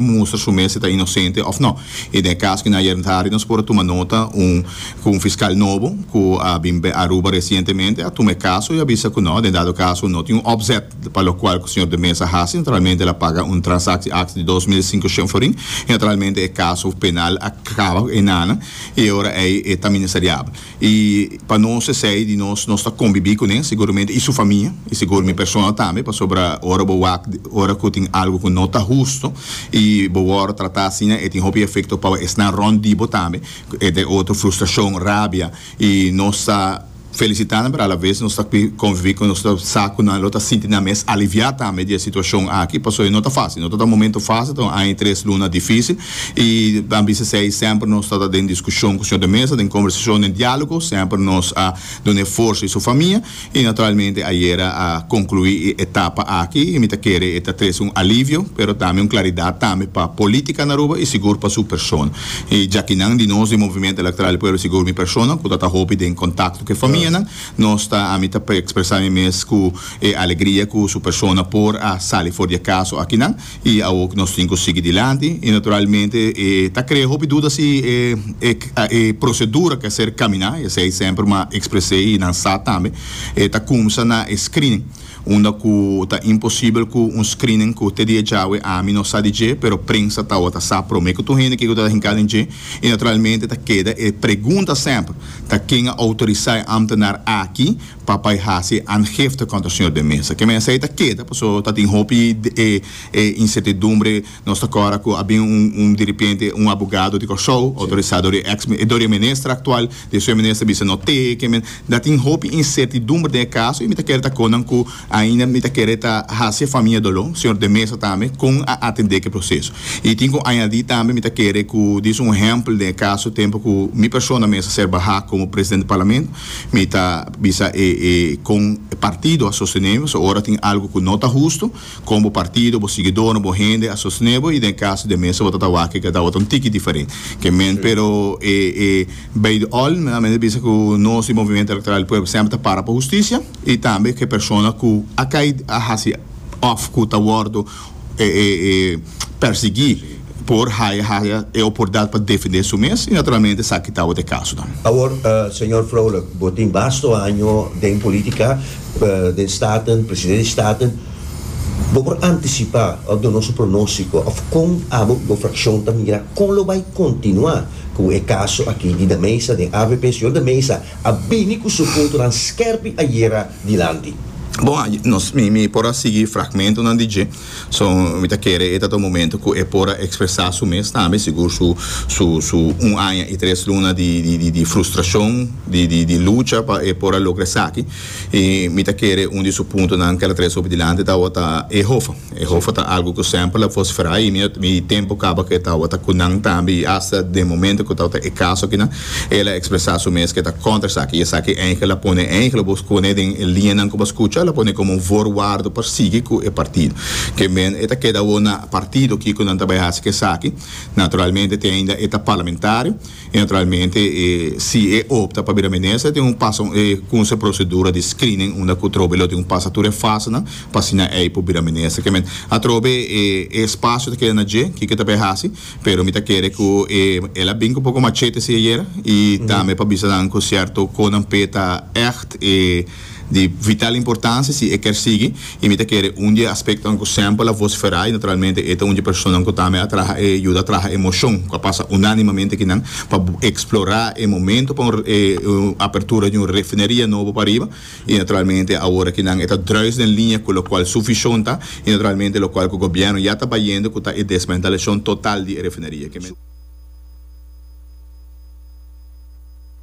mustra su mes si ta inosente òf nò. I den e kas ku nan ayer tardi nos por a tuma nota un ku un fiskal nobo ku a bin b'e Aruba resientemente a tuma e kaso i a bisa ku nò den dado kaso no tin un òpzèt pa lokual ku señor de Meza a hasi naturalmente el a paga un transaksi aks di dos mil i sinku shen florin i naturalmente e kaso penal a kaba ku e nana i e ora ei e ta ministeriabel. I pa nos esei di nos nos ta kombibí ku nan seguramente i su famia i segur mi personal tambe pasobra ora bo wak ora ku tin algu ku no ta hustu i bo wòrdu tratá asina e tin hopi efekto pa esnan rònt di bo tambe entre otro frustrashon rabia i nos ta felisitá nan pero alaves nos ta konvibí ku nos ta sa ku nan lo ta sinti nan mes aliviá tambe di e situashon aki pasobra no ta fásil no ta ta momentu fásil ta un aña i tres luna difísil. I tambe esei semper nos ta ta den diskushon ku señor de mesa den kombersashon den dialogo semper nos a duna e forsa i su famia i naturalmente ayera a konkluí e etapa aki i mi ta kere e ta trese un alivio pero tambe un klaridat tambe pa politika na Aruba i sigur pa su persona i jakinan di nos di Movimiento Electoral del Pueblo sigur mi persona ku ta ta hopi den kontakto ku e famianan nos ta ami ta ekspresá mi mes ku e alegria ku su persona por a sali for di e kaso akinan. I awo ku nos tin ku sigui dilanti i naturalmente e ta krea hopi duda si e e prosedura ke ser kaminá, e esei semper ma ekspresei i nan sa tambe, e ta kumsa na e screening, unda ku ta imposibel ku un screening ku te dia djawe ami no sa di dje pero prensa tabata sa promé ku tur hende kiko ta hinkado den dje i naturalmente ta keda e pregunta semper ta ken a outorisá e ámtenar aki pa bai hasi aangifte kontra señor den mesa. Ke mens ei ta keda paso ta tin hopi e insertidumbre. Nos ta kòrda ku a bin un un diripiente un abogado di Kòrsou outorisá dor e eks dor e minister aktual den su e minister a bisa no te ke men ta tin hopi insertidumbre den e kaso i mi ta kere ta kon nan ku ainda mi ta kere ta hasi e famia doló señor den mesa tambe kon a atendé ke proseso. I tin ku añadí tambe mi ta kere ku dis un ehèmpel den e kaso tempu ku mi persona mester ser bahá komo presidente di parlamento Mi ta bisa e e kon e partido a sostenebo, so ora tin algu ku no ta hustu, kon bo partido, bo siguidornan, bo hende a sostenebo i den e kaso di mester bo ta tawak e gedao ta un tiki diferente ke men. Pero e e bay the all mi ta bisa ku nos di Movimiento Electoral del Pueblo semper ta para pa hustisia i tambe ku e persona ku a kai a hasi òf ku ta wòrdu persiguí por haya haya e oportunidat pa defendé su mes i naturalmente esaki tabata e kaso nan. Awor, señor Vrolijk, bo tin basto año den polítika, den Staten, presidente di Staten. Bo por antisipá òf duna nos un pronóstiko òf kon abo i bo frakshon ta mira kon lo bai kontinuá ku e kaso aki di Da Mesa den avp? Señor Da Mesa a bini ku su puntonan skèrpi ayera. dilanti. Bon, nos, mi, mi por a sigui fragmentonan di dje, so mi ta kere e ta ta un momento ku e por a ekspresá su mes tambe, sigur su, su, su un aña i tres luna di, di, di, di frustrashon, di, di, di lucha pa e por a logra esaki. I mi ta kere un di su puntonan ku el a trese hopi dilanti tabata Ehofa. E hofa ta algu ku semper la fos frai i mi tempu kaba ku e tabata ku nan tambe i asta den momento ku tabata e kaso akinan el a ekspresá su mes ku e ta kontra esaki i esaki eike la pone eike lo bo pone den e liñanan ku bo a skucha la pone komo un vorwardo pa sigui ku e partido ke men e ta keda awor na partido kiko nan ta bai hasi esaki naturalmente te ainda e ta parlamentario. Y naturalmente e si e opta pa bira minister tin un pasa e kunsa e procedura di screening unda cu atrobe lo tin cu pasa tur e fasenan pa asina ey por bira minister kemen atrobe e espacio ta keda na dje kiko ta bay haci pero mi ta kere cu e el a bin cu poco machete si ayera y tambe pa bisa nan cu cierto conan pe ta echt e Di vital importancia si e kier sigui y mi ta kere un di e aspectonan cu semper la vocifera y naturalmente e ta un di e personanan cu tambe a traha e yuda traha e mocion cu a pasa unanimamente aki nan pa explora e momento pa un apertura di un refineria nobo pariba y naturalmente awor aki nan e ta druis den linea cu locual su vision ta y naturalmente locual cu gobierno ya ta bayendo cu ta e desmantelacion total di e refineria.